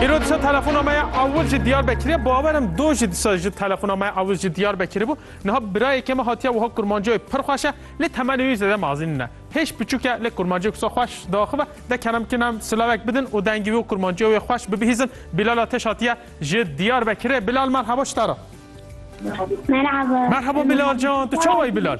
Îro disa telefona me ya ewil ji Diyarbekirê bawer im do jî disa ji telefona me ya ewil ji Diyarbekirê bû. Niha birayekê me hatiye wiha kurmancayê pir xweş e lê temenê wî zêde mazî nîne. Hêj piçûk e lê kurmancê wisa xweş diaxive de kerem bikin em silavek bidin û dengê wî û kurmanciya wê xweş bibihîzin. Bilal Ateş hatiye ji Diyarbekirê. Bilal merheba ji te re. Merhaba. Merheba Bilal can, tu çawa yî Bilal?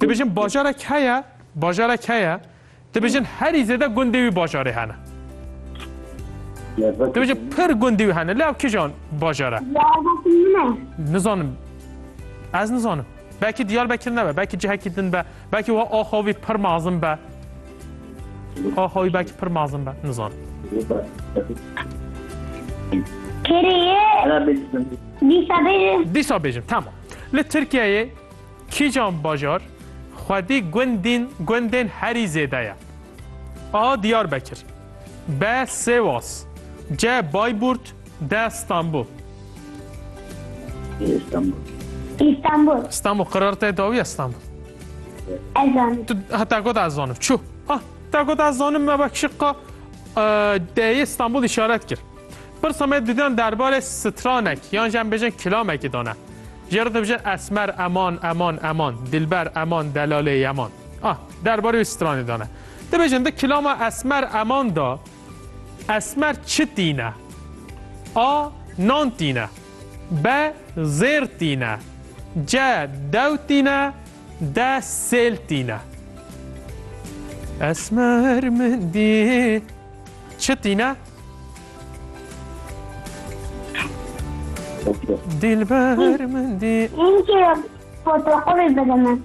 Dibêjin bajarek heye, bajarek heye, dibêjin herî zêde gundê wî bajarê hene. Dibêjin pir gundê wî hene, lê ev kijan bajar e? Nizanim. Ez nizanim. Belkî Diyarbekir nebe, belkî cihekî din be. Belkî we axa wî pir mazin be. Axa wî belkî pir mazin be. Nizan. Kiriye. Dîsa bêjim. Dîsa bêjim. Tamam. Li Tirkiyeyê kîjan bajar xwedî gundîn gundên herî zêde ye? A. Diyarbekir B. Sêwas C. Bayburt D. Stanbul. Stanbul. Stanbul. Stanbul qerar te dawiye Stanbul. Ezan. Tu hata god ez zanim. Çu. Ah, ta god ez zanim me bak şıqqa D'ye İstanbul işaret kir. Bir samet didan derbare stranek yan jen bejin kilamek idane. Jero da bejin esmer eman eman eman dilber eman delale yaman. Ah, derbare stranek idane. De bejin de kilama esmer eman da Esmer çi tîne? A. Nan tîne. B. Zêr tîne. C. Dew tîne. D. Sêl tîne. Esmer min dî çi tîne? Dilber min dî. Ince fotoğrafı izledim.